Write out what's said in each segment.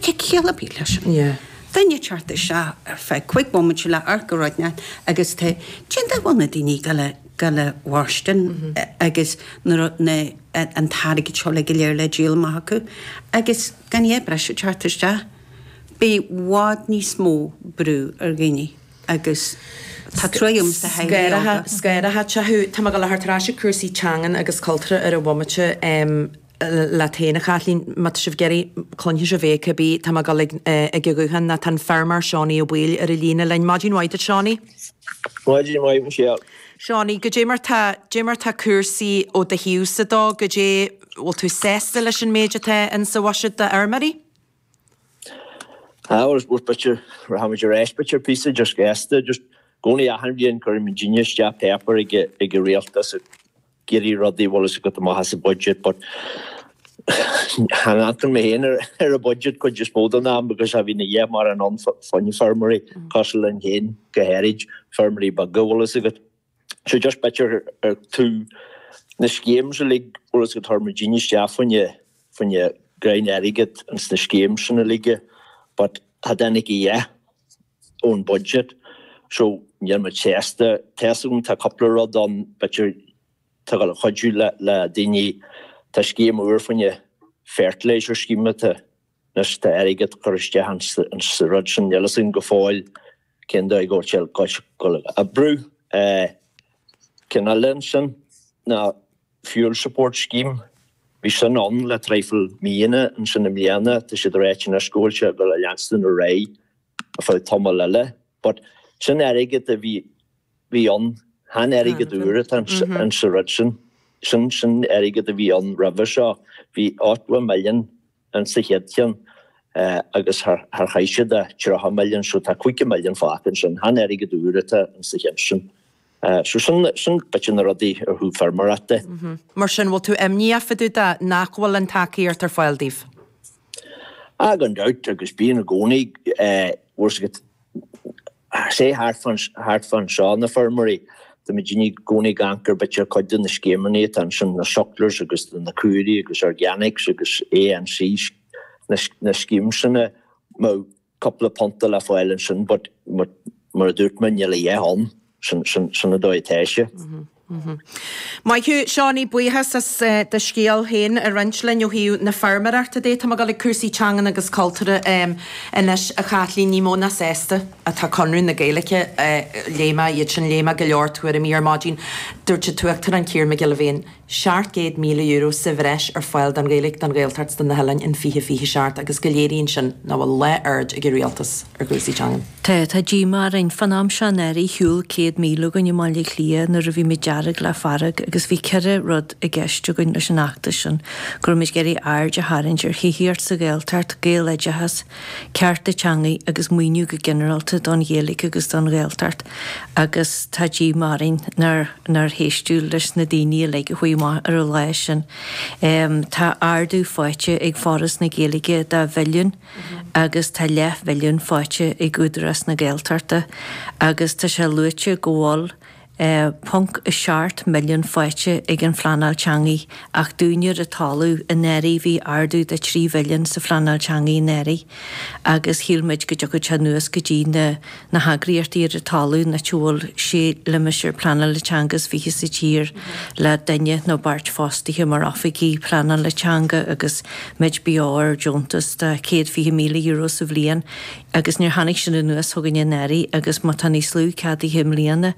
Cén chiall a bhí leis sin? Duine ag teacht isteach ar feadh cúig bhomaite le hamharc a rá leat agus goidé an dóigh a bhfuil na daoine ag goil a mhairstin agus nuair atá an t-airgead seo uilig go léir le díol amach acu agus gan a dhath breise ag teacht isteach i bhfad níos mó brú ar dhaoine agus tá truagh liomsa theaghlaigh óga. Scair a theach thú. Tá mé ag goil a theacht ar ais ag cúrsaí teangan agus cultúra ar an bhomaite. leat féin a Chaitlín, má tá sibh ag iarraidh, cluinfidh sibh é, cibí, tá mé ag dul ag an ghuthán, tá an feirmeoir Seánaí Ó Baoill ar an líne linn. Maidin mhaith duit Seánaí. Maidin mhaith Michelle. Seánaí, goidé mar tá, goidé mar tá cúrsaí ó do thaobhsa de, goidé, bhfuil tú sásta leis an méid atá in sa bhuiséad d'fheirmeoirí? Á, bhuel, I suppose b'fhéidir, rachaimid ar ais, b'fhéidir píosa just sásta, just, i gcónaí achan bhliain cuirimid cineál de pháipéar ag an Rialtas, ag iarraidh rudaí bhfuil fhios agat amach as an budget but chan amharcann mé féin ar an budget cuid is mó den am because cha bhíonn a dhath mórán ann faoi na feirmeoirí cosúil linn féin go háirid, feirmeoirí beaga bhfuil fhios agat. So just b'fhéidir ó thaobh na schemes uilig bhfuil fhios agat chuir muidinne isteach fá choinne gráinnín airgid ins na schemes sin uilig but cha dtáinig a dhath ón budget. So, níl mé sásta. Tá 's agam tá cúpla rud ann b'fhéidir atá ag goil a chuidiú le le daoine. Tá scéim úr fá choinne fertilizer scheme atá anois tá airgead curtha isteach ins ins sa rud sin. Níl 'fhios agam go fóill cén dóigh go bhfuil sé ag goil a oibriú. Eh ceann eile ansin ná fuel support scheme. Bhí sin ann le traidhfil míonna ansin i mbliana tá siad ag ráit anois go bhfuil sé ag goil a leanstan ar aghaidh. ar feadh tamaill eile. But sin airgead a bhí, bhí ann, chan airgead úr atá in sa rud sin. Sin, sin airgead a bhí ann roimhe seo. Bhí ochtó million in sa chéad cheann agus char, char chaith siad ach tríocha million so tá caoga million fágtha ansin. Chan airgead úr atá in sa cheann sin. Sea, sin b'fhéidir na rudaí ó thaobh feirmeoireachta de. Mar sin, bhfuil tú imníoch fá dtaobh de nach bhfuil an tacaíocht ar fáil daoibh? Ah, gan dabht, agus bíonn i gcónaí. Bhfuil 's agat, sea, thart fán, thart fán seo, na feirmeoirí, tá muidinne i gcónaí ag amharc ar b'fhéidir cuid de na scéimeannaí atá ansin, na sucklers agus na caoirigh agus organics agus ANC, na schemes sin a, cúpla punta le fáil ansin but mar a dúirt mé níl a dhath ann, sin an dóigh atá sé. Maith thú Seánaí, buíochas as do scéal féin a roinnt linn ó thaobh na feirmeoireachta de. Tá mé ag dul ag cúrsaí teangan agus cultúra anois a Chaitlín, ní mó ná sásta atá Conradh na Gaeilge. Léigh mé iad sin, léigh mé go leor tuairimí ar maidin. Dúirt an tUachtarán Ciarán Mac Giolla Bhéin. €700,000 sa bhreis ar fáil don Ghaeilge, don Ghaeltacht 's do na hOileáin in 2027 agus go léiríonn sin nach bhfuil lá aird ag an Rialtas ar chúrsaí teangan. Tá, tá díomá orainn. Fán am seo anuraidh shiúl 100,000 againn i mBaile Átha Cliath nuair a bhí muid Dearg le Fearg agus bhí ceithre rud i gceist againn leis an fheachtas sin, go raibh muid ag iarraidh aird a tharraingt ar thithíocht sa Ghaeltacht, Gaeloideachas, cearta teangaidh agus maoiniú go ginearálta don Ghaeilge agus don Ghaeltacht agus tá díomá orainn nár héisteadh leis na daoine uilig a chuaigh amach ar an lá sin. Tá ardú faighte ag Foras na Gaeilge dhá mhilliún agus tá leath-mhilliún faighte ag Údarás na Gaeltachta agus tá sé luaite go bhfuil 1.7 milliún faighte ag an phleanáil teangaidh ach dúinne ar an talamh anuraidh bhí ardú de 3 mhilliún sa phleanáil teangaidh anuraidh agus shíl muid go dtiocfadh sé anuas go dtí na na heagraíochtaí ar an talamh an áit a bhfuil sé limistéar pleanála teanga is fiche sa tír le duine nó beirt fostaithe mar oifigigh pleanála teanga agus muid beo ar deontas de céad fiche míle euro sa bhliain. agus níor tháinig sin anuas chugainn anuraidh agus má tá níos lú ceadaithe i mbliana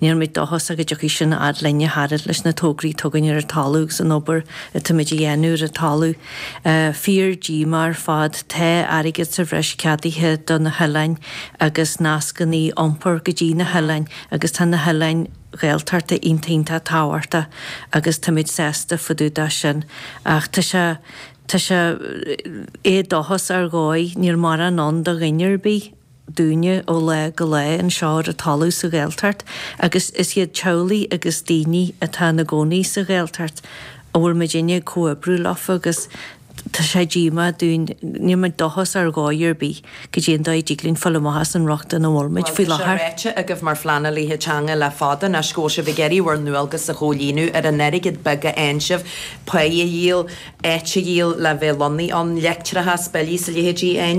níl muid dóchásach go dtiocfaidh sin a fhad linne a fhad leis na tograí atá againn ar an talamh agus an obair atáimid a dhéanamh ar an talamh fíordhíomá ar fad tá airgead sa bhreis ceadaithe do na hoileáin agus nascannaí iompar go dtí na hoileáin agus tá na hoileáin Ghaeltachta iontach iontach tábhachtach agus táimid sásta fá dtaobh de sin ach tá sé Tá sé éadóchasach ar dhóigh. Níl mórán ann do dhuine ar bith, dúinne, ó lá go lá anseo ar an talamh sa Ghaeltacht, agus is iad teaghlaigh agus daoine atá ina gcónaí sa Ghaeltacht a bhfuil muidinne ag comhoibriú leofa agus tá sé díomách dúinn. Níl muid dóchasach ar dhóigh ar bith. caidé an dóigh a dtig linn fáil amach as an riocht ina bhfuil muid faoi láthair. Tá sé ráite agaibh mar phleanálaithe teanga le fada anois go bhfuil sibh ag iarraidh bhur ndualgas a chomhlíonadh ar an airgead beag a fhaigheann sibh, pá a dhíol, áit a dhíol le bheith lonnaithe ann, leictreachas, billí 's a leithéidí?